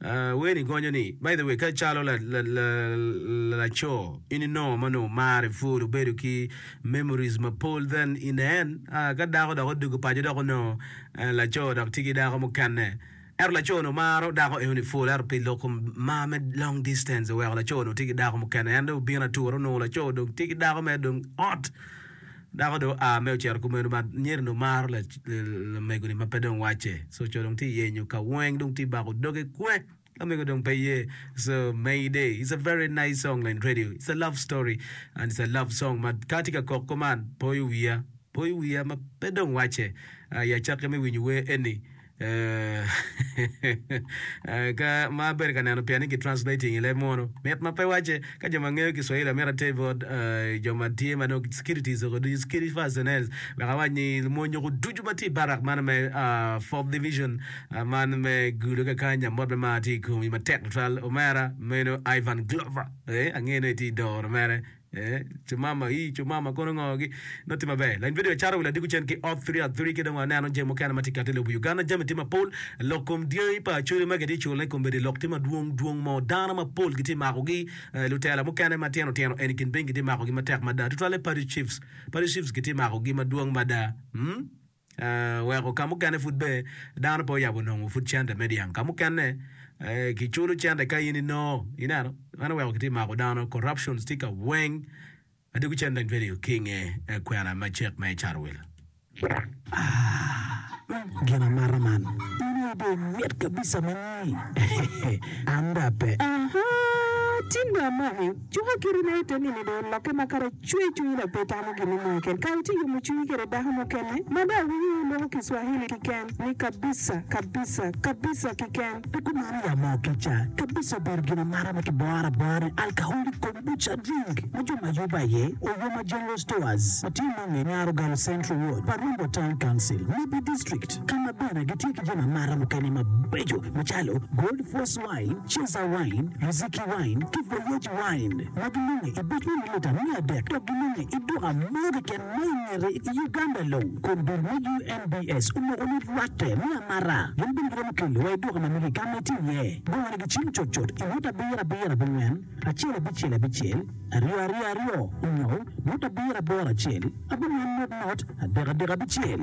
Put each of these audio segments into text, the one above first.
Wer ni gonyo ni, By the way, ka icalo laco, in inongo ma onongo marre pud obedo ki memories mapol then in a en, ah, ka dako dok odwogo paco dok onongo laco dok tye ki dako mukene. Ento laco onongo maro dako eno ni pul ento pi lok kom mar me long distance oweko laco onongo tye ki dako mukene en dong obino atura onongo laco dong tye ki dako mere dong hot. Dako dong oa me ocito kumeno ma nyereni omaro lamego-ni ma pe dong wacce. Co co dong tye yenyo ka weng dong tye bako doge kwe lamego dong pe ye. So Mayday is a very nice song in radio. It's a love story and it's a love song ma ka atye ka kok kuman poyo wiya, poyo wiya ma pe dong wacce. I acakke me winyo wer eni Eeh, ka ma abedo ka neno piani ki translating i leb munu, mit ma pe wacce. Ka jo ma ngeyo ki swahili amito ater bot jo ma tye ma dong securities oko ducu, security personnels, wek awac ni mony oko ducu ma tye i barak man me fourth division man me gulu ka kany, amot me mar tye i komi matek tutwal omera meno Ivan Glover, eeh angeyo ni itye i doro mere. Eh, cumama, ii, cumama, kono ngo gi, nongo tye maber. Lain video acara wi ladiko cen ki oth three at three ki dong aneno jami mukene ma tye kati i lobo Uganda, jami tye mapol, lok kom dyangi pa Acholi ma kitye cule kombeddi lok tye madwong dwong mo, dano mapol kitye mako gi, eh, lutela mukene ma tyeno tyeno eni kin piny kitye mako gi matek mada, tutwalle Paddy Chiefs, Paddy Chiefs kitye mako gi madwong mada, mm. weko ka mukene pud be dano pe oyabo nongo pud cente me dyang. Ka mukene ki culo cente ka in inongo, ineno, meno weko kitye mako dano, corruptions tye ka weng, adwogi cen dong pe ringo ki inge kwena ma cek me carowil. Ah, gin amata man, in aye dong imit kabisa mani, an dong ape. Aha, tinda amaki. Cuka kiti ne te nino do olokke ma kare cwer cwiny dok pe tamo gin mo keken ka itye yomo cwinyi kwede dako mukene ma dong awinyo loko ki swahili kiken ni kabisa kabisa kabisa kiken. Pi kumeno ya mo kica, kabisa obedo gin amata ma kiboro abora ni alcoholic kombucha drink ma jo ma Yuba aye Oyoma General Stores ma tye nongo i Nyarogalo Central Ward pa Rombo Town Council, Mibi District, ka ma bene gitye ki jami amata mukene mabeco macalo Gold Force, Wine, Cesar Wine, Riziki Wine, ki Voyage Wine, ma gilunge i bot mililita mia adek dok gilunge i duka mo keken ma i ngete i Uganda long. Kun dul me UNBS omoko ni rwatte me amara gin bene giromo kelo wa i duka ma mege ka ma itye iye. Bongo ni gicim cutcut i ngut abiro abiro abongwen, acel abicel abicel, aryo aryo aryo, onyo ngut abiro aboro acel, abongwen ngut ngut, adek adek abicel.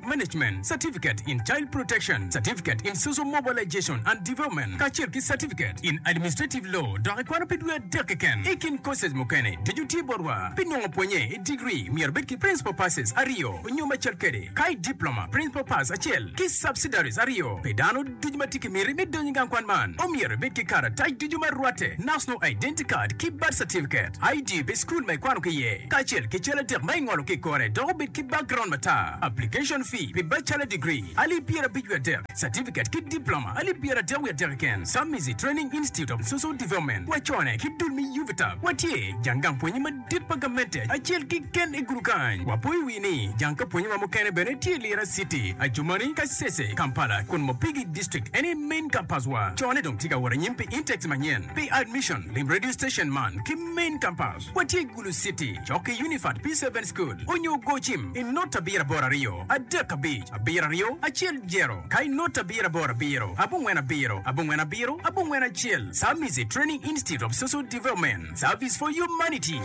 Management Certificate in Child Protection, Certificate in Social Mobilization and Development, kacel ki Certificate in Administrative Law, dok ikwano pi dwe adek keken. I kin courses mukene, ducu tye botwa. Pi nongo pwonye i degree, myero ibed ki Principal Passes aryo nyo macel kwede, ka i Diploma, Principal Pass acel, ki Subsidiaries aryo pi dano. Ducu ma tye ki miti me donyo i gang kwan man omyero ibed ki karatac ducu ma rwatte, National Identity Card ki Birth Certificate, ID pi cukul ma ikwano ki iye, kacel ki cal adek ma ingolo ki i kore dok obed ki background matar. Application fee pi Bachelor Degree, alip pyerabic wiye adek, Certificate ki Diploma, alip pyeradek wiye adek keken, Samisi Training Institute of Social Development, wacone ki dul me UVTAB, watye jang gang pwonye madit. Tit pa gamente acel kiken i gudu kany. Wapo i wi ni jang ka pwonye ma mukene bene tye i Lira city, Adjumani, Kasese, Kampala, kun Mopigi district en aye main campus wa. Co ne dong tye ka wot anyim pi intakes manyen pi admission. Lim radio station man ki main campus wa tye i Gulu city cok ki Unifat P seven school onyo go cim i not abiro aboro aryo adek abic abiro aryo acel jero ka i not abiro aboro abiro abongwen abiro abongwen abiro abongwen acel Samizi training institute of social development. Service for Humanity.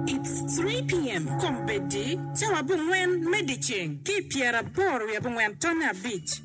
It's 3 PM Kombeddi cawa abongwen me dyeceng ki pyeraboro wiye abongwen tonne abic.